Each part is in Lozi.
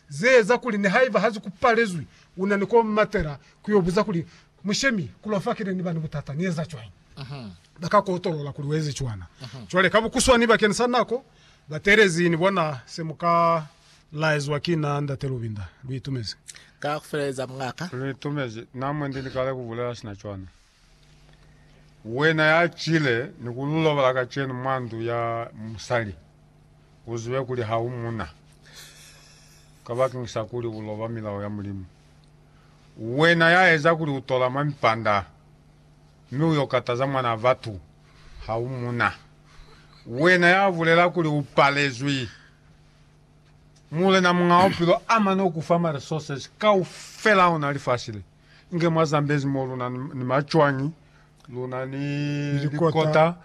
Ze eza kuli nihaiba ha ziku palezwi, u na ni ko matela ku yo buza kuli, Mu shemi, ku lwa fa ki ne ni ba ni butata, ni eza cwañi? Ba ka ku otolola kuli u ezi cwana. Cwale, ka bukuswani bakeni sa nako, ba teelezi, ni bona se mu ka laezwa ki na, Ndate Lubinda. Lu itumezi. Ka ku feleleza, mungaka. Lu itumezi. Na mwendi ni kale ku bulela sina cwana. Wena ya cile ni ku lulobola kacenu mwa ndu ya musali, u zibe kuli ha u muna, kabakeni sa kuli u loba milao ya Mulimu. Wena ya eza kuli u tola mwa mipanda, mi u yo kataza mwanaa batu, ha u muna. Wena ya bulela kuli u palezwi, Mulena Muñaa Bupilo a mane ku fa ma resources kaufela ona lifasi le. Inge mwa Zambezi mo luna ni macwañi, luna ni likota,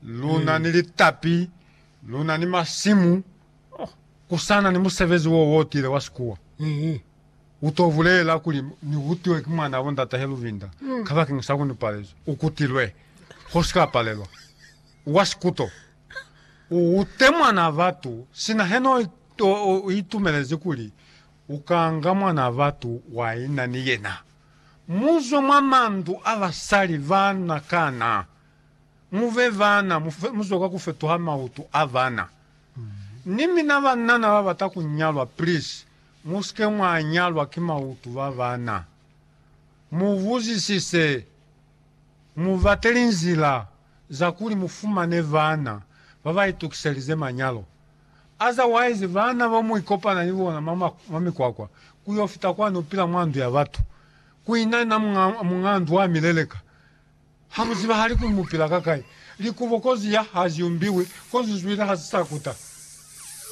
luna ni litapi, luna ni masimu, kusana ni musebezi wo wo tile wa sikuwa, u to bulela kuli, Ni hutiwe ki mwanabo ndata he Luvinda, kabakeng sa ku ni palezwe. U kutilwe. Ho si ka palelwa. U wa sikuto. U hute mwana batu, sina he no itumelezi kuli Ukanga Mwanaa Batu wa ina ni yena, muzwe mwa mandu a basali ba na kana, mube bana, muzwe kwa kufetuha mautu a bana. Ni mina banana babata kunyalwa, please, musike mwa nyalwa ki mautu ba bana. Mubuzisise, mubate linzila za kuli mufumane bana babaitukiselize manyalo. Otherwise baana ba mu ikopana ni bona mwa, mwa mikwakwa, ku yo fita kwani u pila mwa ndu ya batu. Ku ina na muñ'a, muñ'a ndu a mi leleka. Ha mu zibahali kuli mu pila ka kai. Likubo kozi ya ha zi umbiwi, kozi zwili ha si sa kuta.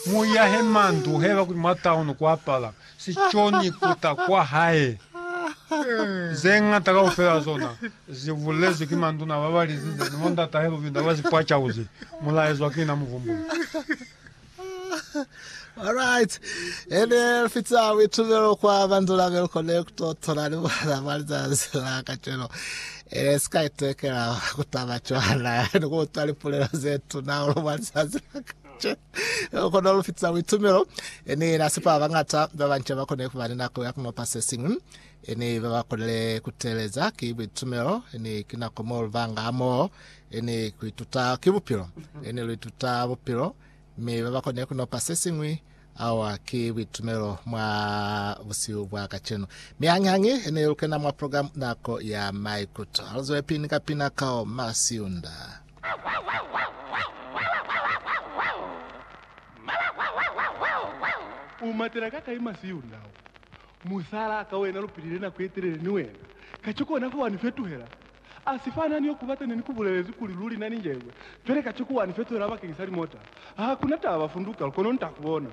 Mu iya he mandu, heba kuli mwa town ku apala. si coni kuta kwa hae. Ze ñata kaufela zona zi bulezwi ki manduna ba ba lizize ni bo ndatahe Lubinda ba sipwacauzi, mu laezwa ki na Muvumbuli. Alright. E ne fita buitumelo kwa manduna be lu kone ku to tola ni bona mwa lizazi la kacwelo. E ne si ka itekela ku taba cwana ni ku utwa lipulelo ze tuna hahulu mwa lizazi la kacwelo. Che. Ku kona ku lu fitisa buitumelo. Ni yena sipa ba bañata ba banca ba kone ku ba ni nako ya ku nopa se siñwi. Ni ba ba konile ku teeleza ki buitumelo. Ni ki nako mo lu banga hamoho ni ku ituta ki bupilo. Ni lu ituta bupilo, mi ba ba kone ku nopa se siñwi. Awa ki buitumelo mwa busihu bwa kacenu. Mi hañihañi ni lu kena mwa program Nako ya Maikuto. Ha lu zwelapili ni kapina ka o Masiunda. U matela ka kai masi yo ndau? Musala ka wena lu pilile nako ye telele ni wena, kaciko ona fa wa ni fetuhela. A si fana ni yo ku bata ne ni ku bulelezi kuli luli na ni njebwe, pele kaciko wa ni fetuhela bakeng sa limota. Ha ku na taba, funduka, kono nta ku bona.